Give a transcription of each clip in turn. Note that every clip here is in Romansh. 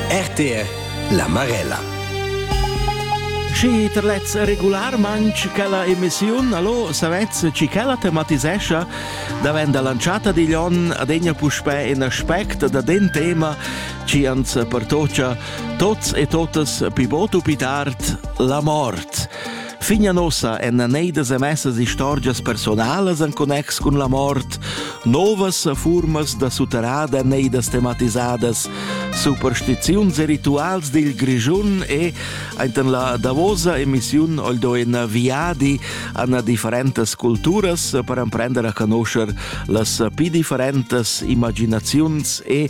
RTR La Marella Schi terlez regularmanc quella emissiun, allo savez ci quella tematisescha davent lanciata digl on adegna puspè in aspect da den tema ci ans pertocia tots e totas pi botu pi tard la mort. Fin a nossa èn neidas emessas istorgias personalas en connex cun la mort, novas furmas da sutterrada neidas tematisadas, superstiziuns e rituals dil Grischun e enten la davosa emissiun oldo in viadi an differentas culturas per emprender a conoscer las pi differentas imaginaziuns e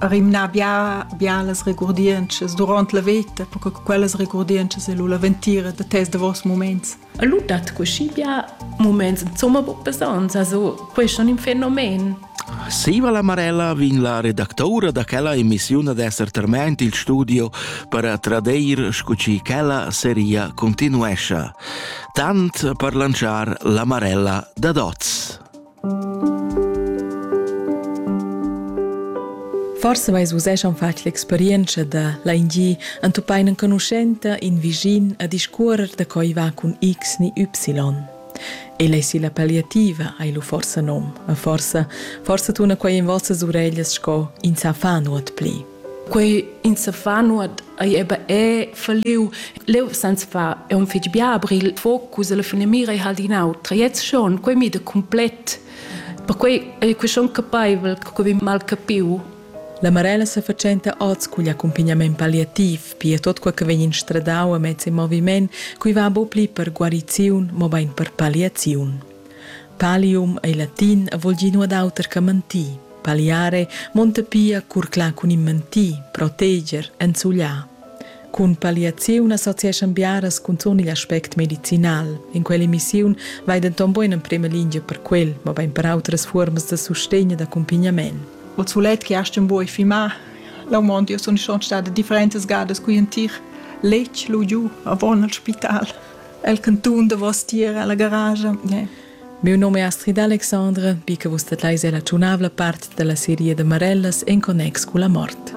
rimnar bia bialas regurdientschas duront la veta, perché quellas regurdientschas è lu la ventira da tes davos moments. E lu dat così bia moments insomma buc besonns, also questo è un fenomen. Siva la Marella vin la redactaura da quella emissiun ad esser terment il studio per tradeir scu ci quella seria continuescia. Tant per lanciar la Marella da Doz. Forse vais vus eschan fatg l'experienza da l'ANG antupain enconuschenta in visin a discuorer da coi va cun X ni Y. E lei si la palliativa hai lu forsa nom, a forsa, forsa tuna quei in vossas ureglias sco in sa fa nuot pli. quei in sa fa nuot ei eba è falliu leu sans fa è un fetg bia aber il focus alla fine mira e halt in autra jetzt schon quei mi da complet per quei ei quei schon capeivel che quei mal capiu La Marella sa facenta oz cugl accumpignament palliativ, pia tot quei che vegn instradau a mezz in moviment, cui va bo pli per guariziun, mo bein per palliaziun. Palium ei latin e vul dir nuot auter che mentir. Paliare monta pia curclar cun in mentir, proteger, enzugliar. Cun paliaziun associeschan biaras cunzun igl aspect medicinal. In quell'emissiun vai denton buca en emprema lingia per quel, mobein per outras fuormas da sustegn e d'accumpagnament. O sulet che hast un buoi fimar, la mondi io sun schon stada differentas gadas qui in tir letg lu giu avon al spital. el cantun davostier alla garage. Yeah. Miu num è Astrid Alexandre, bi che vus dat leis è la tschunavla part dalla seria de Marellas en connex cu la mort.